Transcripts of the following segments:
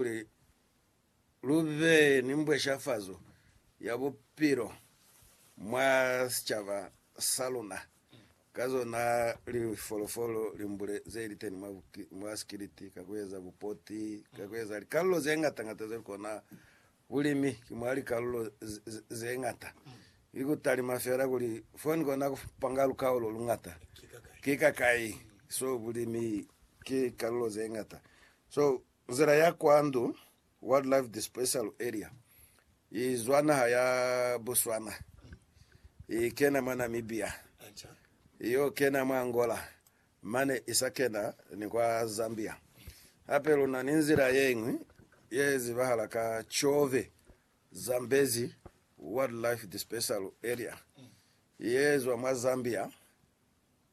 kuli lu be ni mbweshafazo ya bupilo mwa sicaba sa luna ka zona lifolofolo limbule ze li teni mwa, mwa sikiliti, ka ku eza bupoti, ka ku eza likalulo ze ngata-ngata ze li kona. Bulimi ki mwa likalulo ze ngata. Ki ku talima fela kuli fo ni kona ku panga lukao lo lungata ki kakai. So bulimi ki kalulo ze ngata. So Nzila ya kwa Ndu Wildlife Dispersal Area i zwa naha ya Botswana i kena mwa Namibia, i yo kena mwa Angola mane i sa kena ni kwa Zambia. Hape lu na ni nzila ye ñwi ye zibahala ka Tshove Zambezi Wildlife Dispersal Area ye zwa mwa Zambia,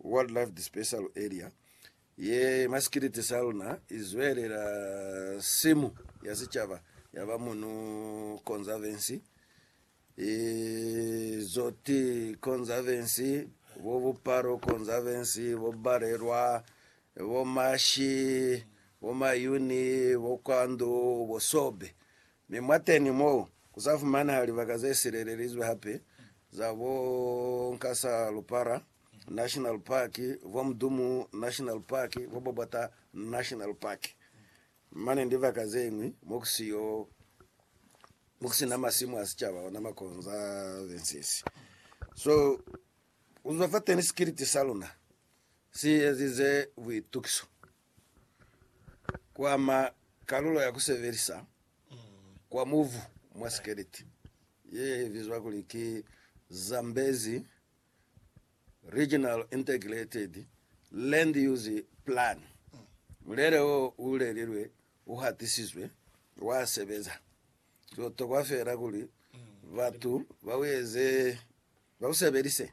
Wildlife Dispersal Area, ye masikiliti sa luna izwelela simu ya sicaba ya ba Munu Conservancy, Izoti Conservancy, bo Bupalo Conservancy, bo Balelwa, bo Mashi, bo Mayuni, bo Kwandu, bo Sobe. Mi mwateñi mo, ku za fumanaha libaka ze silelelizwe hape za bo Nkasa Lupara National Park, bo Mdumu National Park, bo Bobota National Park, mane ni libaka ze ñwi mo ku siyo, mo ku si na masimu a sicaba ona ma conservancies. So, ku zwa fateñi sikiliti sa luna si ezize buitukiso. Ku ama kalulo ya ku sebelisa kwa mubu mwa sikeleti ye bizwa kuli ki Zambezi Regional Integrated Land Use Plan. Mulele wo u lelilwe u hatisizwe, wa sebeza. Ku tokwa feela kuli batu ba u eze, ba u sebelise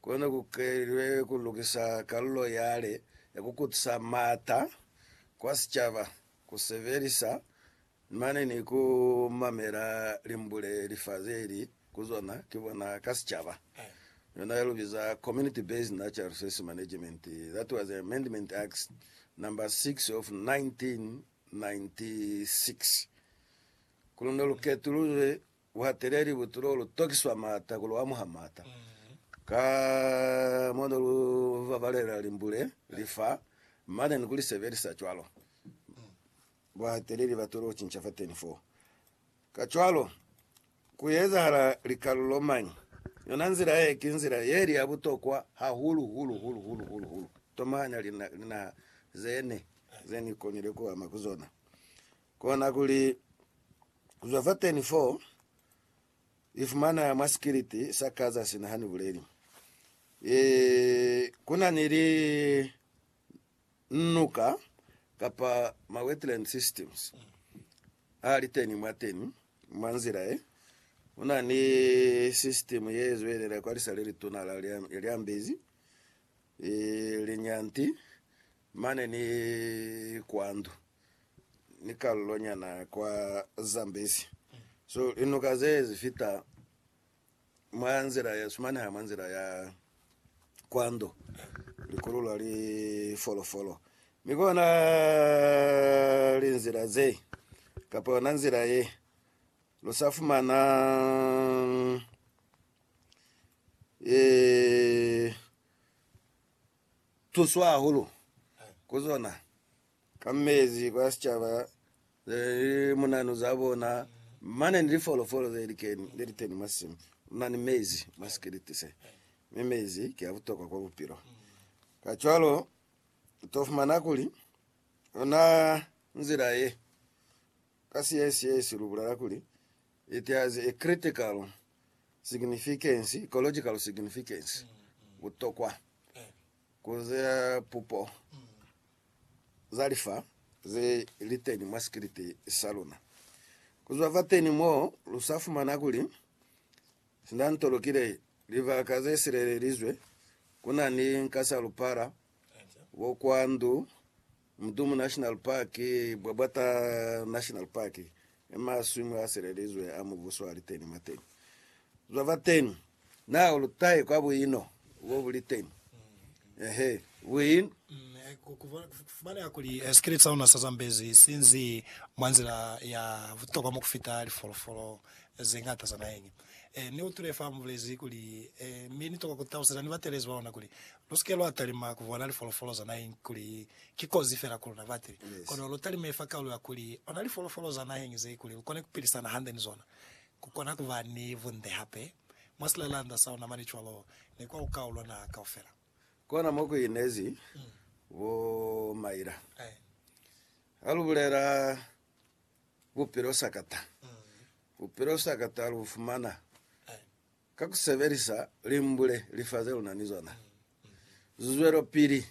Kono ku kelilwe ku lukisa kalulo yale ya ku kutisa m'ata kwa sicaba, ku sebelisa mane ni ku mamela limbule li fa ze li ku zona ki bona ka sicaba, yona ya lu biza Community Based Natural Resources Management, that was Amendment Act Number 6 of 1996. Kono ne lu ketuluzwe Ku hatele libutulo lu tokiswa maata ku lu amuha maata. Ka mo ne lu babalela limbule, lifa, mane ni ku li sebelisa cwalo, bu hatele libatulo lu cinca fateni foo. Kacwalo, ku ezahala likalulo mañi? Yona nzila ye ki nzila ye li ya butokwa hahulu, hulu, hulu, hulu, hulu, hulu. Tomahanya linaha ze ne, ze ni konile ku ama ku zona. Kona kuli, ku zwa fateni fo, Ni fumana mwa sikiliti sa Kaza sina ha ni buleli. E, ku na ni li nuka, kapa ma wetland systems, a li teni mwa teni, mwa nzila ye. Ku na ni system ye zwelela kwa lisa le lituna la Lyambezi, e, Linyanti, mane ni kwandu. ni kalulo nyana kwa Zambezi. So linuka ze zi fita mwa nzila ya sumaneha mwa nzila ya kwando likululwa li folofolo mi kona linzila ze kapa yona nzila ye lu sa fumana ee tuso hahulu ku zona. ka mezi kwa sicaba neli munanu za bona mane ni lifolofolo ze likeni leli teni mwa simu mna ni mezi mwa sikiliti se mi mezi ki a butokwa kwa bupilo ka cwalo to fumana kuli ona nzila ye ka siyesiyesi lu bulala kuli it has a critical significance ecological significance butokwa Ku ze pupo za lifa ze li teni mwa sikiliti sa luna. Ku zwa fateni mo, lu sa fumana kuli sindanto lukile libaka ze silelelizwe ku na ni nkasalupala bo kwa ndu, Mudumu National Park, Bwabwata National Park, i maswimu a silelizwe a Mubuso wa Liteni mwa teñi zwa fa teñi na lutahe kwa buino bo bu li teñi. Ehe, buino. Mm, eh, ku- ku- ku- kufumaneha kuli eh, sikiliti sa luna sa zambezi sinzi mwa nzila ya butokwa mo kufita lifolofolo eh, ze ngata za naheñi. Eh, ni utwile fa mubulezi kuli eh, mi ni tokwa ku taluseza ni batelezi ba luna kuli Lu si ke lwa talima ku bona lifolofolo za naheñi kuli ki kozi fela ku luna bati, kono lu talime fa kaulo ya kuli ona lifolofolo za naheñi ze kuli lu kone ku pilisana hande ni zona, ku kona ku ba ni bunde hape mwa silelanda sa luna mane cwalo ni kwa lukau lwa naha kaufela. Kona mo ku inezi bo Myra. Ha lu bulela bupilo sakata, bupilo sakata lu fumana Ka ku sebelisa limbule lifa ze lu na ni zona, lu zwelopili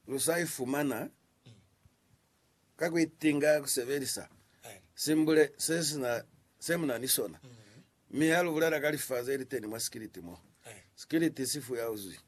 lu sa ifumana ka ku itinga ku sebelisa simbule se sina se mu na ni sona. Mi ha lu bulela ka lifa ze li teni mwa sikiliti mo, sikiliti si fuya uzwi.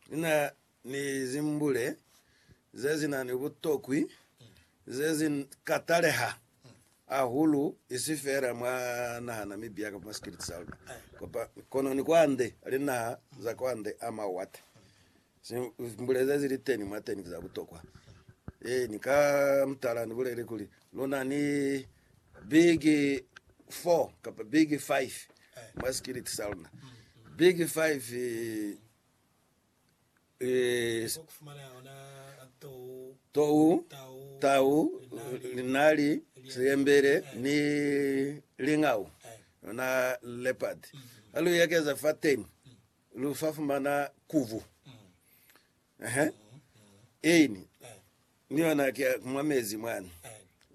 Ni na ni zimbule ze si na ni butokwi ze si ka taleha hahulu, isi feela mwa naha Namibia kamba mwa sikiliti sa luna, kono ni kwande, linaha za kwande a mawate. Zimbule ze si li teni mwateni ki za butokwa. Ee, ni ka mutala ni bulele kuli, lu na ni big four kamba big five mwa sikiliti sa luna. Big five. tou, tau, linali, seyembele, ni lingau, yona leopard. Ha lu ekeza fateni, lu fa fumana kubu. Ehe. Ini, ni yona ke mwa mezi mwani.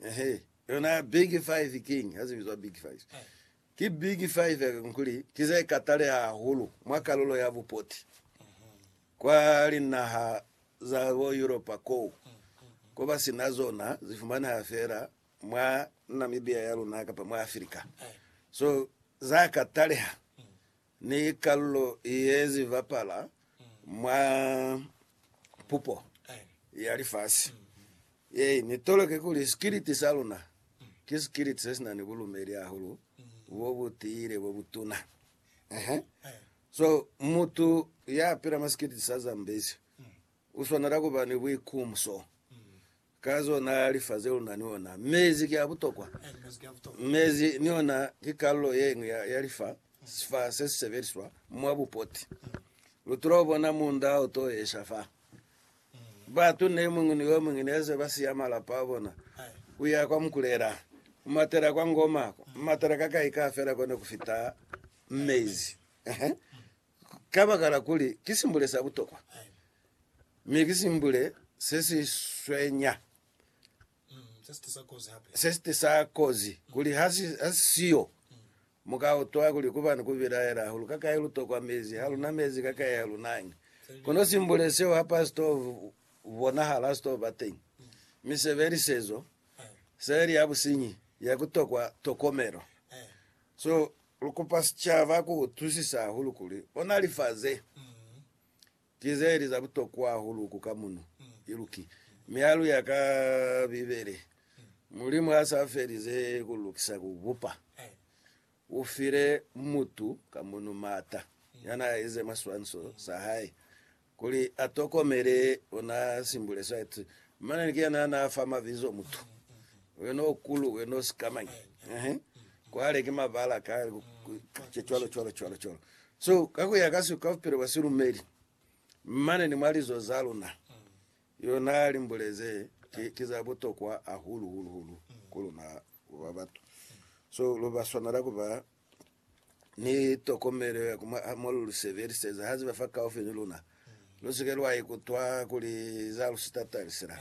Ehe. Yona big five king, ha se bizwa big five. Ki biki fa ifekako kuli ki ze kataleha hahulu mwa kalulo ya bupoti kwa linaha za bo Yuropa koo ko ba si na zona? Zi fumaneha fela mwa Namibia ya luna kapa mwa Afrika. So za kataleha. Ni kalulo ye zi bapala mwa pupo ya lifasi ye ni toloke kuli sikiliti sa luna ki sikiliti se si na ni bulumeli hahulu bo bu tiile bo bu tuna. Ehe. So, mutu ya pila mwa sikiliti sa Zambezi u swanela ku ba ni buikumso. Ka zona lifase luna ni ona. Mezi ki a butokwa. Mezi ni ona ki kalulo ye ñwi ya, ya lifa, sifa se si sebeliswa mwa bupoti. Lu tula ubona munda o to esha fa. Batu ne muñwi ni yo muñwi ne se ba siya malapa a bona, ku ya kwa Mukulela, ku matela kwa Ngoma, ku matela ka kai ka fela ko ne ku fita mezi. Kabakala kuli ki simbule sa butokwa, mi ki simbule se si swenya, se si tisa kozi, kuli ha si siyo, mu ka utwa kuli ku ba ni ku bilaela hahulu ka kai lu tokwa mezi, ha lu na mezi ka kai ha lu nañi. Kono simbule seo ha pa si to bonahala, ha si to ba teñi, mi se be lisezo, se be li ya businyi, ya ku tokwa tokomelo. So, Lu kupa sicaba ku utwisisa hahulu kuli ona lifa ze ki ze li za butokwa hahulu ku ka muno, iluki. Mi ha lu ya ka Bibele, Mulimu ha sa felize ku lukisa ku bupa, u file mutu ka muno maata ya n'a ize maswanso sa hae Kuli a tokomele, o na simbule site. Mane ni kuyena ha na fa mabizo mutu. Wena o kulu, wena o sikamañi. Ehe. Kwale ki mabala ka, ka, cwalo, cwalo, cwalo, cwalo. So, ka kuya ka si, ka bupilo bwa silumeli, mane ni mwa lizo za luna, yo na limbule ze ki, ki za butokwa hahulu, hulu, hulu ku luna ku ba batu. So, lu ba swanela ku ba ni tokomelo ya ku mwaha mo lu lu sebeliseza ha ziba fa kaufi ni luna. Lu si ke lwa ikutwa kuli za lu sitatazi sila.